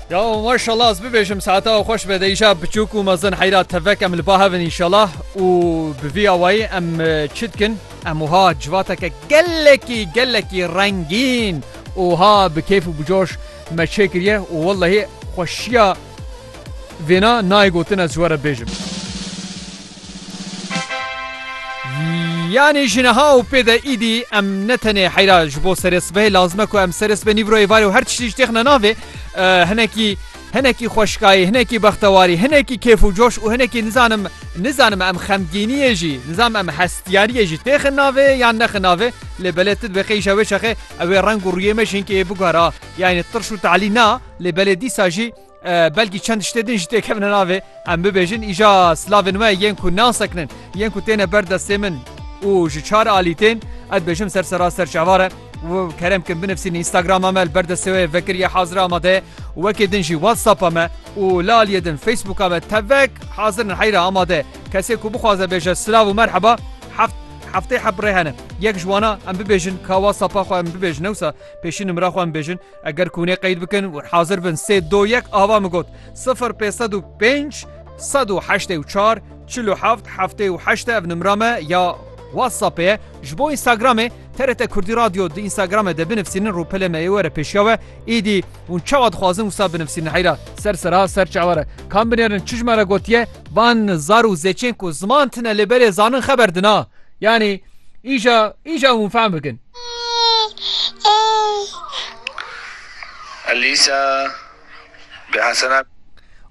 Ya maşallah ez bibêjim saeta ew xweş be deyja biçûk û mezin heyra tevek em li ba hevin inşallah û bi vî awayî em çi dikin em wiha civateke gelekî gelekî rengîn û ha bi kêf û bicoş me çêkiriye û wellehî xweşiya vêna nayê gotin ez ji we re bêjim. Yanî ji niha û pê de îdî em ne tenê heyra ji bo serê sibehê lazim e ku em serê sibê nîvro êvarê û her tiştî ji têxine navê hinekî hinekî xweşkayî hinekî bextewarî hinekî kêf û coş û hinekî nizanim nizanim em xemgîniyê jî nizam em hestiyariyê jî têxin navê yan nexin navê lê belê tu dibê qeyşa wê çaxê ewê reng û rûyê me jî hinkê bigara yanî tirş û talî na lê belê dîsa jî belkî çend tiştê din jî têkevine navê em bibêjin îja silavên we yên ku nasekinin yên ku têne ber destê min û ji çar alî tên ez bêjim ser sera ser çavare kerem kim binivsîn Instagrama me li ber destê wê vekiriye hazir amade wekê din jî WhatsAppa me û li aliyê din Facebooka me tevek hazir in heyra amade kesê ku bixwaze bêje silav û merheba heft heftê heb rê hene yek ji wana em bibêjin ka WhatsAppa xwe em bibêjin ewsa pêşîn nimira xwe em bêjin Eger kûnê qeyd bikin û hazir bin sê do yek ava min got sifir pê sed û pênc sed û heştê û çar çil û heft heftê û heşte ev nimra me ya WhatsAppê ye ji bo Instagramê TRT Kurdî Radyo di Instagramê de binivsînin rûpelê me ê were pêşiya we êdî hûn çawa dixwazin wisa binivsînin heyra ser sera ser çawere kam binêrin çi ji me re gotiye van zar û zêçên ku ziman tine lê berê zanin xeber dina yanî îja îja hûn fehm bikin Elîsa bi Hesena.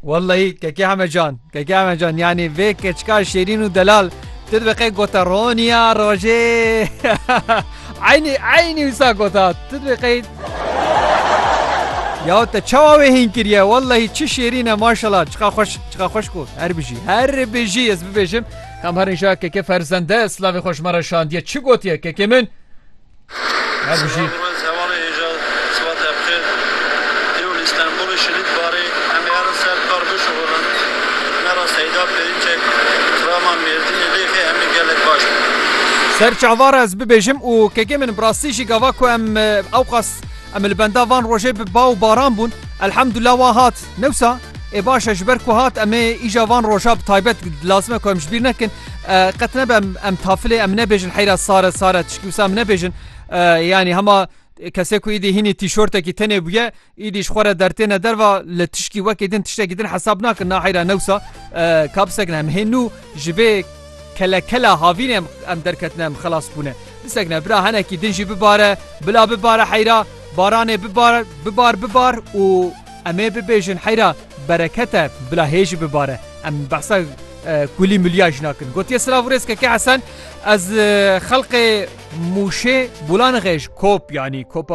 Wellahî Keke Heme Can, Keke Heme Can yanî vê keçika şêrîn û delal tu dibiqê gote roniya rojê eynî eynî wisa gota tu dibiqê Ya te çawa wê hîn kiriye wellahî çi şêrîn e maşallah çiqa xweş çiqa xweş got her bijî her bijî ez bibêjim Kam herin ja keke ferzende slavê xwe ji me re şandiye çi gotiye kekê min her bijî. Ser çavara ez bibêjim û kekê min bi rastî jî gava ku em ewqas em li benda van rojê bi ba û baran bûn elhemdullah wan hat. Newsa ê baş e ji ber ku hat em ê îja van roja bi taybet lazim e ku em ji bîr nekin qet nebe em em tafilê em nebêjin heyra sare sare tişkî wisa em nebêjin yanî hema kesê ku îdî hînî tîşortekî tenê bûye îdî ji xwe re dertêne derva li tişkî wekê din tiştekî din hesab nakin na heyra newsa kapsekne em hê nû ji vê kelekela havîn em em derketine em xelas bûne bisekne bira henekî din jî bibare bila bibare heyra baranê bibar bibar bibar û Em ê bibêjin heyra bereket e bila hê jî bibare. Em behsa kulî mulîya jî nakin. Gotiye silav û rêz Keke Hesen ez xelqê Mûşê Bulanixê ji kop yanî kopa